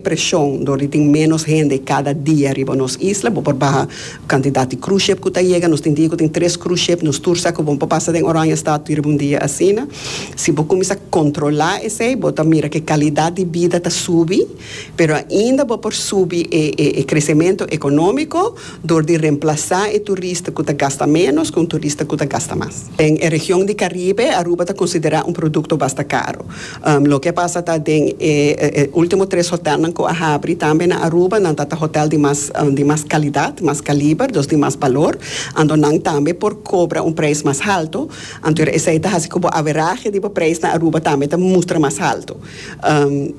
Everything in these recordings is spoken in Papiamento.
preshon dor di tin ménos hende kada dia riba nos isla. Bo por baha kantidat di cruise ship ku ta yega. Nos tin dia ku tin tres cruise ship. Nos tur sa ku bo por pasa den Oranjestad riba un dia asina. Si bo kuminsá kontrolá esei bo ta mira ku e kalidat di bida ta subi, pero ainda bo por subi e kresementu ekonómiko dor di remplasá e turista ku ta gasta ménos ku un turista ku ta gasta mas. Den e region di Caribe, Aruba ta considera un producto basta caro. Loke a pasa ta den e ultimo tres hotelnan cu a habri tambe na Aruba, nan ta ta hotel di mas di mas calidad, mas caliber, dos di mas balor, anto nan tambe por cobra un prijs mas halto, anto esey ta haci cu bo averaje di bo prijs na Aruba tambe ta mustra mas halto.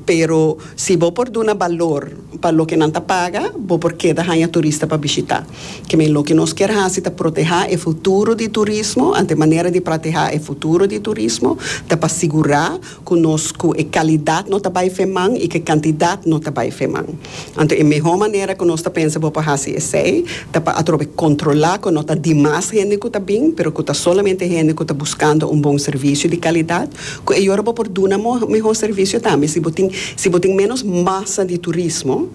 Pero si bo por duna balor pa loke nan ta paga, bo por keda hanja turista pa bishita. Kemi loke nos kier hasi ta protehá e futuro di turismo, anto e manera di pratehá e futuro di turismo ta pa sigurá ku nos ku e kalidat no ta bai feman i ku e kantidat no ta bai feman. Anto e mehó manera ku nos ta pensa bo pa hasi esei ta pa atrobe kontrolá ku no ta dimas hende ku ta bin pero ku ta solamente hende ku ta buskando un bon servisio di kalidat ku e yora bo por duna mehó servisio tambe si bo tin si bo tin ménos masa di turismo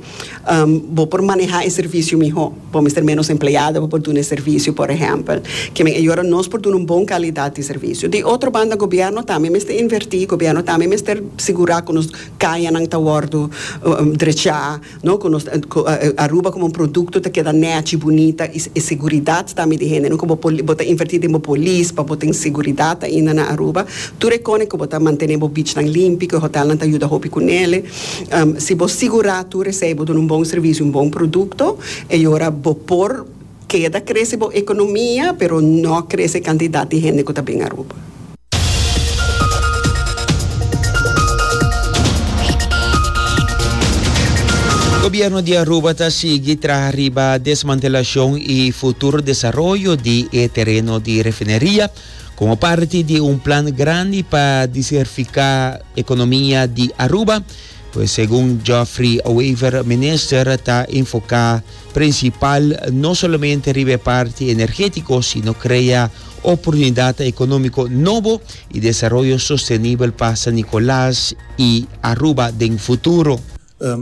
Um, bo por maneha e servicio miho. Bo mester menos empleado pa por duna e servicio, por ehempel. Ke men a yora nos por duna un bon calidad di servicio. Di otro banda gobierno tambe mester inverti, gobierno tambe mester sigura cu nos cayanan ta wordo um drecha, no? Cu nos cu Aruba como un producto ta keda nechi, bunita y e seguridad tambe di hende, no? Cu bo poli, bo ta inverti den bo polis pa bo ten seguridad ainda na Aruba. Tur e cone cu bo ta mantene bo beachnan limpi, cu e hotelnan ta yuda hopi cu nele. Si bo sigurá tur esei bo duna un bon servisio, un bon produkto, e ora bo por keda krese bo ekonomia, pero no krese e kantidat di hende ku ta bin Aruba. Gobièrnu di Aruba ta sigui traha riba desmantelashon i futuro desaroyo di e tereno di refineria, komo parti di un plan grandi pa disertifiká, Economia di Aruba, pues segun Geoffrey Wever Minister ta enfoca principal no solamente riba e parti energetico sino crea oportunidad economico nobo y desaroyo sostenibel pa San Nicolas y Aruba den futuro.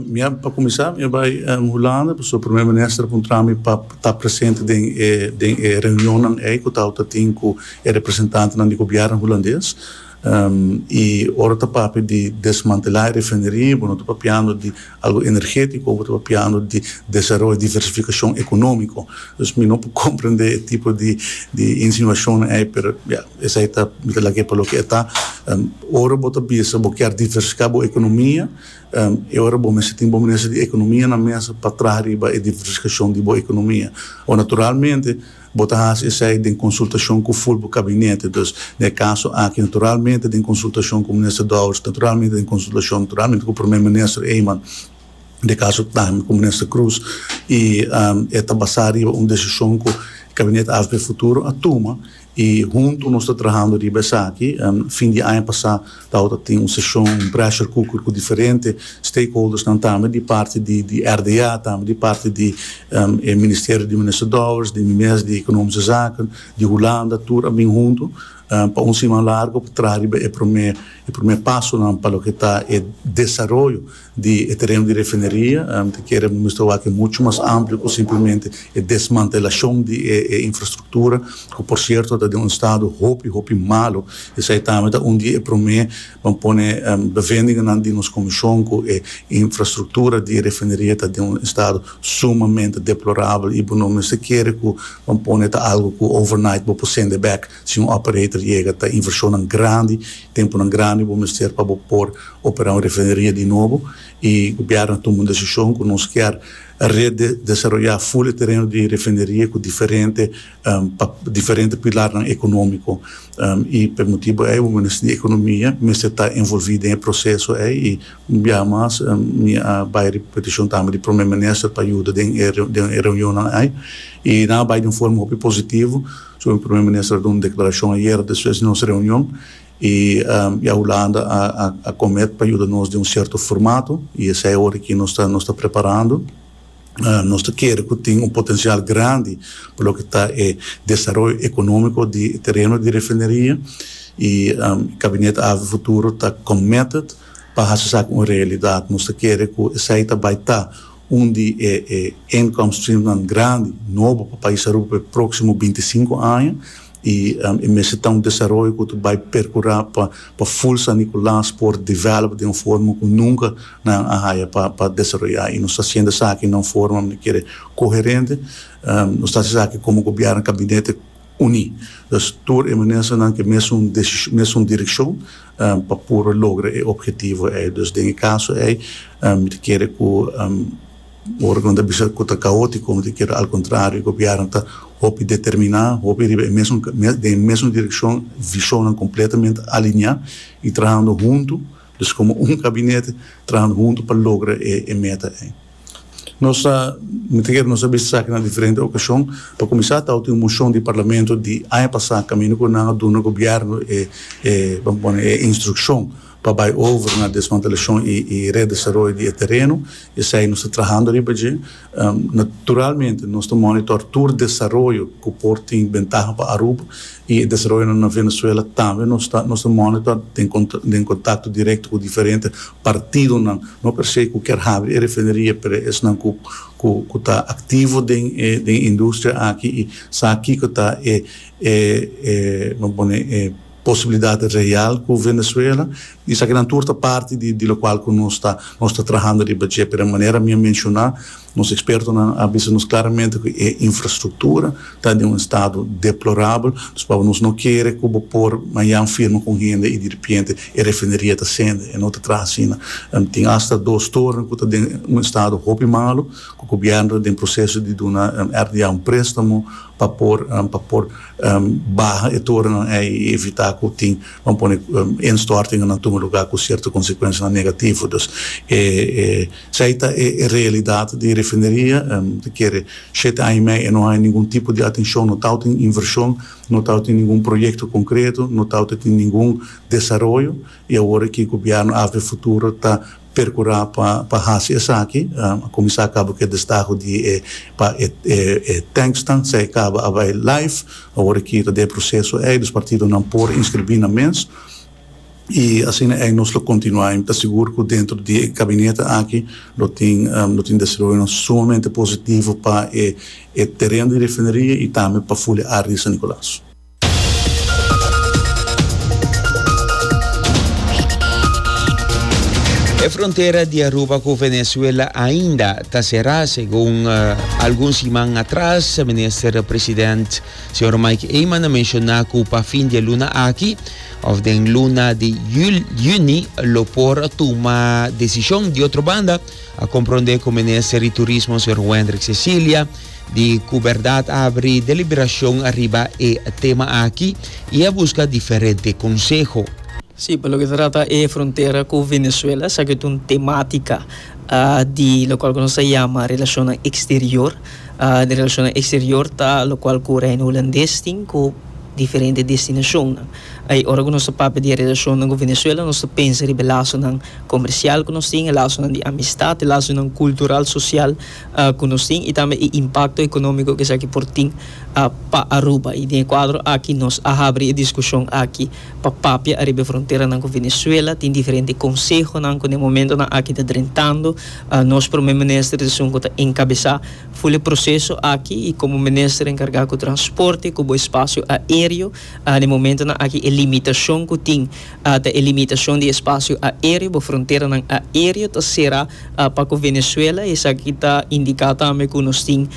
Mi a, pa kuminsá, mi a bai Hulanda, pasobra Prome Minister a puntra mi pa ta presente den e, den e reunionnan ei ku tawata tin ku e representantenan di gobièrnu hulandes. I ora ta papia di desmantelá e refineria, bo no ta papiando di algu energétiko, bo ta papiando di desaroyo, diversifikashon ekonómiko. Dus mi no por komprendé e tipo di, di insinuashonnan ei, pero ya, esei ta, mi ta laga e pa loke e ta. Ora bo ta bisa bo kier diversifiká bo ekonomia, E ora bo mester tin bo minister di economia na mesa pa traha riba e diversificacion di bo economia. Awor naturalmente bo ta haci esai den consultacion cu full bo cabinete. Dus, na e caso aki naturalmente den consultacion cu minister Dowers, naturalmente den consultacion naturalmente cu Prome Minister Eman, na e caso tambe cu Minister Croes y e ta basa riba un decision cu cabinete AFP Futuro a tuma. I huntu nos ta trahando riba esaki. Fin di aña pasá tabata tin un seshon, un pressure cooker, ku diferente stakeholdersnan tambe di parti di RDA, tambe di parti di e ministerio di Minister Dowers, di mi mes di Ekonomische Zaken, di Hulanda, tur a bin huntu pa un siman largu pa traha riba e promé pasonan pa loke ta e desaroyo di e tereno di refineria, mi ta kere bo muestra awor ku e muchu mas amplio ku simplemente e desmantelashon di e infrastruktura, ku por sierto ta den un estado hopi hopi malo, esei tambe ta un di e promé ban pone bevendinganan di nos komishon ku e infrastruktura di e refineria ta den un estado sumamente deplorabel i bo no mester kere ku ban pone ta algu ku overnight bo por sende bek. Si un operator yega ta invershonnan grandi, tempunan grandi bo mester pa bo por operá un refineria di nobo i gobièrnu a tuma un desishon ku nos kier redesaroyá ful e tereno di refineria ku diferente pa diferente pilarnan ekonómiko i p'e motibu ei bo mester di ekonomia mester ta envolví den e proseso ei i un biaha mas mi a bai riba petishon tambe di Prome Minister pa yuda den e reunionnan ei i nan a bai di un forma hopi positivo. Su Primer Minister a duna un declaracion ayer despues di nos reunion y ya Hulanda a comet pa yuda nos den un cierto formato y esey awor aki nos ta nos ta preparando. Nos ta kere cu tin un potencial grandi pa loke ta e desaroyo economico di e tereno di refineria y Cabinet Avi Futuro ta committed pa haci esaki un realidad. Nos ta kere cu esey ta bay ta Un di e e income streamnan grandi, nobo pa pais Aruba pa e proximo binti sinku aña y e mester ta un desaroyo cu ta bay percura pa pa Full San Nicolas por develop den un forma cu nunca nan a haya pa pa desaroya y nos ta haciendo esaki na un forma mi kere coherente, nos ta haci esaki como gobierno, Gabinete. uní. Pues tur e mininsternan ke mesun desishon, mesun direkshon pa puru logra e ophetivo ei. Pues den e kaso ei mi ta kere ku ora ku nan ta bisa ku ta kaótiko mi ta kere al kontrario e gobièrnu ta hopi determiná, hopi riba e mesun den e mesun direkshon, vishonnan kompletamente aliniá i trahando huntu. Dus komo un gabinete trahando hunto pa logra e meta ei. Nos ta mitiger, nos a bisa esaki na diferente okashon. Pa kuminsá ta otin un moshon di parlamento di aña pasá kaminda ku nan a duna gobièrnu e e ban pone e instrukshon pa bai over na desmantelashon i redesaroyo di e tereno. Esei nos ta trahando riba dje. Naturalmente nos ta monitor tur desaroyo cu por tin bentaha pa Aruba y e desaroyonan na Venezuela. Tambe nos ta nos ta monitor den contacto directo cu diferente partidonan, no per se cu kier habri e refineria pero esnan cu cu cu ta activo den e den e industria aki y sa kico ta e e e, lo pone e. posibilidat real cu Venezuela y esaki nan tur ta parti di di locual cu nos ta nos ta trahando riba dje. Pero manera mi a menciona nos expertonan a bisa nos claramente cu e infrastructura ta den un estado deplorabel dus pasobra nos no kere cu bo por mayan firma cu un hende y di ripiente e refineria ta sende e no ta traha asina. Tin hasta dos toren cu ta den un estado hopi malo cu gobierno ta den proceso di duna RDA un prestamo pa por pa por baha e torennan ei i evitá ku tin pa pone instòrtingannan tuma lugá ku sierto konsekuensianan negativo. Dus esei ta e realidat di refineria. Ta kere shete aña i mei e no haña ningun tipo di atenshon, no ta outin invershon, no ta outin ningun proyekto konkreto, no ta outin ningun desaroyo i awor aki gobièrnu AFB Futuro ta percura pa pa haci esaki, a cuminsa cabo cu e destaho di e pa e e e tanksnan sai caba a bay life, awor e kita di e proceso ey, dus partidonan por inscribi na mes, y asina ey nos lo continua, y mi ta sigur cu dentro di e gabinete aki lo tin lo tin desaroyonan sumamente positivo pa e e tereno di refineria y tambe pa Fuliaardi y San Nicolas. E frontera di Aruba ku Venezuela ainda ta será segun uh, algun siman atras minister president señor Mike Eman a menciona ku pa fin di luna aki of den luna di jul, juni lo por tuma decision. Di otro banda a comprende ku minister di turismo señor Wendrick Cecilia di cu Berdad a abri deliberacion ariba e tema aki y a busca diferente conseho. Si, pa loke ta trata e frontera cu Venezuela, esaki ta un tematica di locual cu nos ta yama relacionnan exterior. Den relacionnan exterior ta locual cu Reino Hulandes tin cu diferente destinacionnan. Ai, ora cu nos ta papia di e relacionnan cu Venezuela nos ta pensa riba e lasonan comercial cu nos tin, e lasonan di amistad, e lasonan cultural, social ku nos tin i tambe e impakto ekonómiko ku esaki por tin pa Aruba. I den e kuadro aki nos a habri e diskushon aki pa papia ariba e fronteranan ku Venezuela. Tin diferente konsehonan ku den momentonan aki ta drentando. Nos Prome Minister di esun ku ta enkabesá ful e proseso aki i komo Minister enkargá ku Transporte ku bo Espasio Aéreo den momentonan aki e limitashon ku tin. Ata e limitacion di espacio aereo bo fronteranan aereo ta cera pa cu Venezuela, esaki ta indica tambe cu nos tin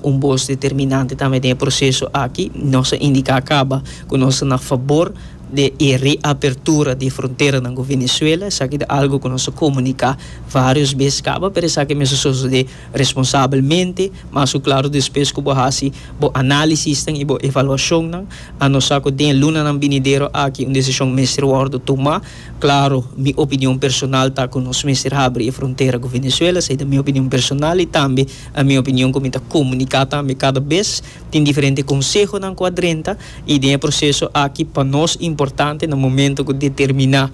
un bos determinante tambe den e proceso aki. Nos a indica caba cu nos ta na fabor di e reapertura di e fronteranan cu Venezuela, esaki ta algo cu nos a comunica varios bes caba, pero esaki mester sosode. responsabelmente, mas ku klaru despues ku bo hasi bo análisisnan i bo evaluashonnan. A no sa ku den e lunanan binidero aki un desishon mester wòrdu tumá. Klaru, mi opinion personal ta ku nos mester habri e frontera ku Venezuela. Esei ta mi opinion personal i tambe a mi opinion ku mi ta komuniká tambe kada bes. Tin diferente konsehonan ku a drenta i den e proseso aki pa nos importante na momentu ku determiná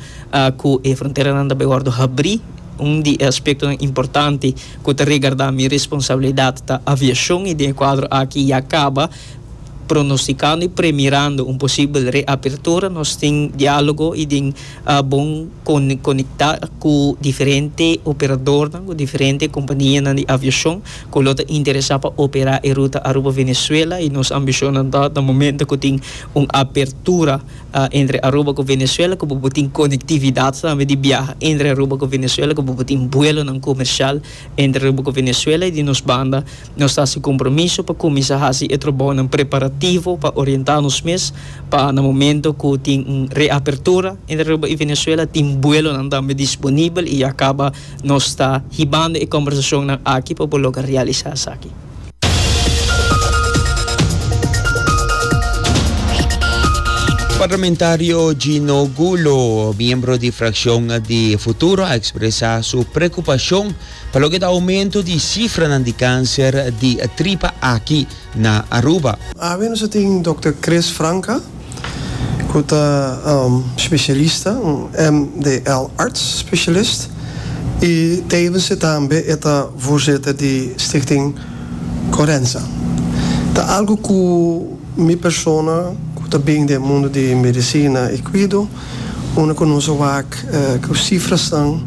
ku e fronteranan ta bai wòrdu habrí, Un di e aspektonan importante ku ta regardá mi responsabilidat ta aviashon i den e kuadro aki ya kaba pronostikando i premirando un posibel reapertura nos tin diálogo i den bon konektá ku diferente operadornan, ku diferente kompanianan di aviashon ku lo ta interesá pa operá e ruta Aruba-Venezuela i nos ambishonnan ta ta momento ku tin un apertura. entre Aruba ku Venezuela ku bo por tin konektividat tambe di biaha entre Aruba ku Venezuela ku bo por tin buelonan komersial entre Aruba ku Venezuela i di nos banda nos ta hasi kompromiso pa kuminsá hasi e trobounan preparativo pa orientá nos mes pa na momento ku tin un reapertura entre Aruba i Venezuela tin buelonan tambe disponibel i ya kaba nos ta hibando e kòmbersashonnan aki pa bo logra realisá esaki. Parlamentario Gino Gulo, miembro di fraccion di Futuro, a expresa su preocupacion pa loke ta aumento di cifranan di cancer di tripa aki na Aruba. Awe nos a tin Dòkter Chris Franka. ku ta spesialista, un MDL arts specialist, i tevense tambe e ta voorzitter di Stichting Corenza. Ta algu ku mi persona ku ta bin den mundu di medisina i kuido, unda ku nos a wak ku sifrasnan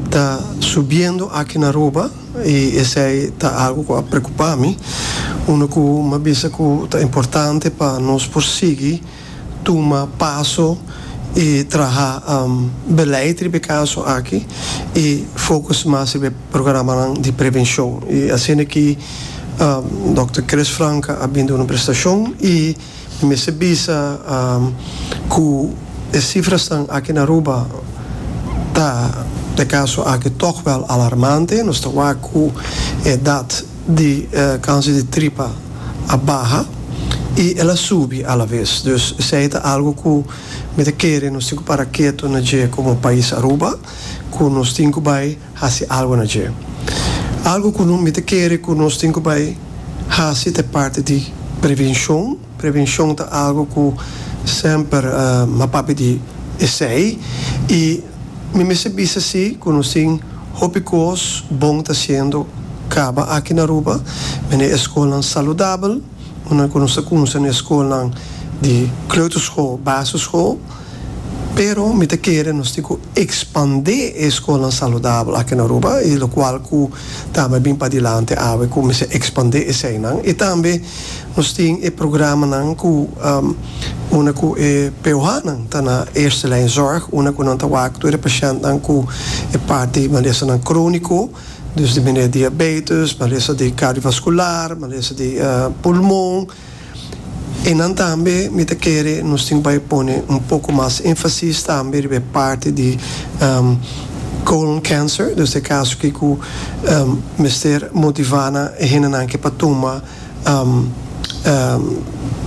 ta subiendo aki na Aruba, I esei ta algu ku a preokupá mi, unda ku mi a bisa ku ta importante pa nos por sigui tuma paso i traha beleid riba e kaso aki i fokus mas riba e programanan di prevenshon. I asina ki Dòkter Chris Franka a bin duna un prestashon i. Mi mester bisa cu e cifrasnan aki na Aruba ta, p'e caso aki, toch wel alarmante. Nos ta wak cu e edad di cancer di tripa a baha y el a subi alavez. Dus esey ta algo cu mi ta kere nos tin cu para keto na dje como pais Aruba, cu nos tin cu bay. hasi algu na dje. Algu ku no mester kere ku nos tin ku bai hasi ta e parti di prevenshon. Prevenshon ta algu ku semper a papia di esei i mi mester bisa si ku nos tin hopi kos bon ta hasiendo kaba aki na Aruba. Mi na e skolnan saludabel, una ku nos ta kumsa na e skolnan di kleuterschool, basisschool, pero mi ta kere nos tin ku. expande e scolnan saludabel aki na Aruba y locual cu tambe a bin padelante awe cu mester expande eseynan y tambe nos tin e programanan cu unda cu e POHnan ta na eerste lijn zorg unda cu nan ta wak tur e patientnan cu e parti di malesanan cronico dus di manera diabetes, malesa di cardiovascular, malesa di pulmon. E nan tambe mi ta kere nos tin bai pone un poko mas enfasis tambe riba e parti di colon cancer dus ta e kaso ki ku mester motiva nan e hendenan ke pa tuma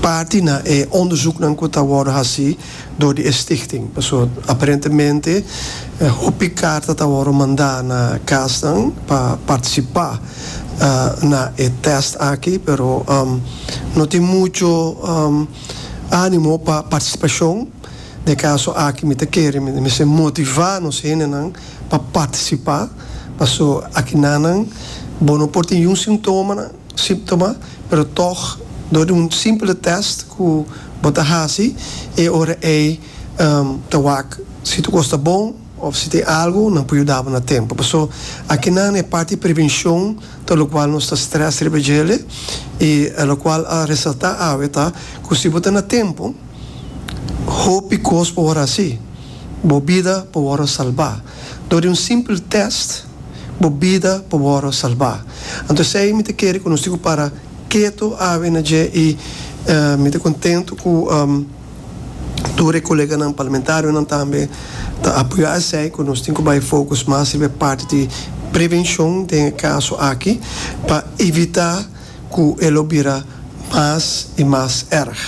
parti na e onderzoeknan ku ta wòrdu hasi. dor di e stichting. Paso aparentemente hopi karta ta wòrdu mandá na kasnan pa partisipá na e tèst aki, pero no tin muchu ánimo pa partisipashon. Na e kaso aki mi ta kere mi mester motivá nos hendenan pa partisipá, paso aki nanan bo no por tin yun sintomanan. siptoma pero tog dor di un simpele test ku bo ta hasi e ora ei ta wak si tu kos ta bon of si tin algu nan por yuda bo na tempu paso akinan e parti di prevenshon ta lokual nos ta stress riba djele i a lokual a resalta awe ta ku si bo ta na tempu hopi kos por wor hasi bo bida por wor a salba dor di un simpele test. bo bida por wòrdu salbá. Anto esei mi ta kere ku nos tin ku para ketu awe na dje i mi ta kontentu ku tur e koleganan parlamentarionan tambe ta apoyá esei ku nos tin ku bai fokus mas riba e parti di prevenshon den e kaso aki pa evitá ku e lo bira mas i mas èrg.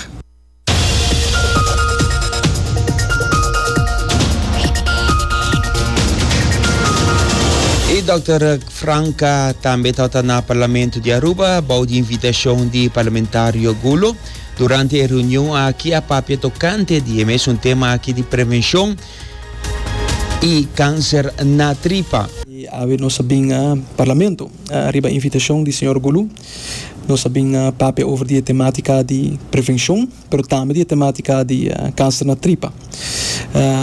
E Dòkter Franca tambe tabata na Parlamento di Aruba bou di invitashon di Parlamentario Gulo. Durante e reunion aki a papia tokante di e mesun tema aki di prevenshon i kanser na tripa. Awe nos a bin Parlamento riba invitashon di señor Gulo. Nos a bin papia over di e tematica di prevencion, pero tambe di e tematica di cancer na tripa.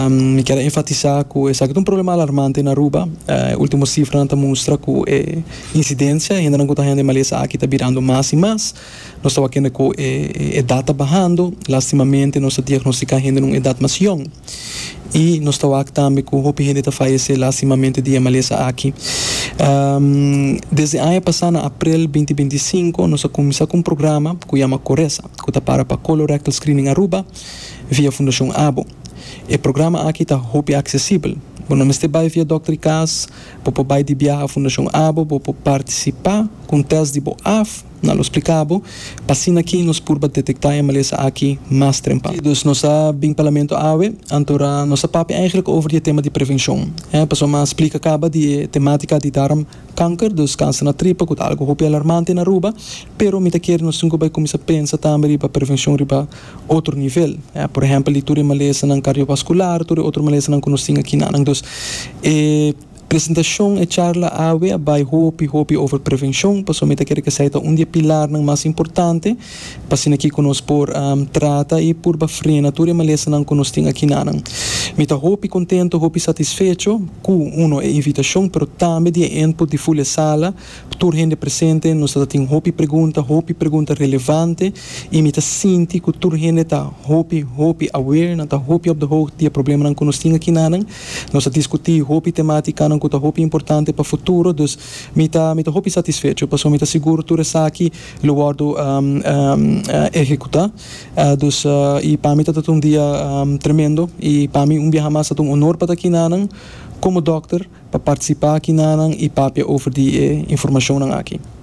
Mi kier a enfatisa cu esaki ta un problema alarmante na Aruba. E ultimo cifranan ta mustra cu e incidencia, e hendenan cu ta hende malesa aki, ta birando mas y mas. Nos tabatin cu e edad ta bahando. Lastimamente nos ta diagnostica hende na un edad mas yong. y nos ta wak tambe cu hopi hende ta fayece lastimamente di e malesa aki. Desde aña pasa na aprel binti binti sinku nos a cuminsa cu un programa cu yama Coresa cu ta para pa Colorectal Screening Aruba via Fundacion Abo. E programa aki ta hopi accesibel. Bo no mester bay via dokter di cas, bo por bay di biaha Fundacion Abo, bo por participa cu un test di bo af, Na lo spliká bo p'asina ki nos purba detektá e malesa aki mas trempan. Dus nos a bin Parlamento awe, antora nos a papia eigenlijk over di e tema di prevenshon. E pasobra a splika kaba di e temátika di darm kanker, dus kanser na tripa ku ta algu hopi alarmante na Aruba, pero mi ta kere nos tin ku bai kuminsá pensa tambe riba prevenshon riba otro nivel. E por ehèmpel di tur e malesanan kardiovaskular, tur e otro malesanan ku nos tin aki na nan. Dus e. Presentacion, E charla awe a bay hopi hopi over prevencion, pasobra mi ta kere cu esey ta un di e pilarnan mas importante pa asina kico nos por trata y purba frena tur e malesanan cu nos tin aki nanan. Mi ta hopi contento, hopi satisfecho cu, uno, e invitacion, pero tambe di e input di Full e Sala, P tur hende presente nos ta tin hopi pregunta, hopi pregunta relevante y mi ta sinti cu tur hende ta hopi, hopi aware, nan ta hopi op de hoogte di e problemanan cu nos tin aki nanan. Nos ta discuti hopi tematicanan cu ta hopi importante pa futuro, dus mi ta mi ta hopi satisfecho pasobra mi ta sigur tur esaki lo wordo ehecuta. Dus y pa mi ta ta un dia tremendo y pa mi un biaha mas ta ta un honor pa ta aki nanan como dokter. pa partisipá aki na nan i papia over di e informashonnan aki.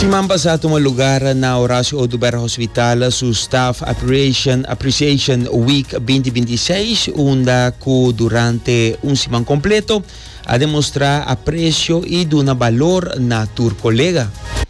Siman pasá tuma lugar na Horacio Oduber Hospital su Staff Appreciation Appreciation Week binti binti i seis unda ku durante un siman kompleto a demostrá apresio i duna balor na tur kolega.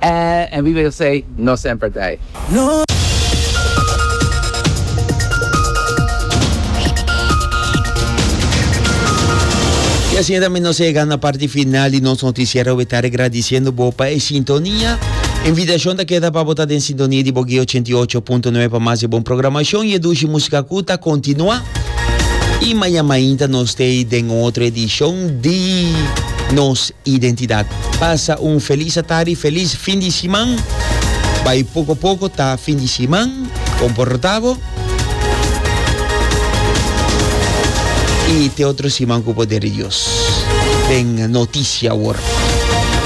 Eh, en vive Josey no semper t'ei. Y asina ta mi nos a yega na parti final di nos noticiero Wetare gradiciendo bo pa e sintonia. E invitacion ta keda pa bo ta den sintonia di Bogué 88.9 pa mas di e bon programacion y e dushi musica cu ta continua. Y maña mainta nos t'ei den otro edicion di nos Identidad. Pasa un felis atari, felis fin di siman. Bai poco poco ta fin di siman. Comporta bo. Y te otro siman cu poder di Dios. Den noticia awor.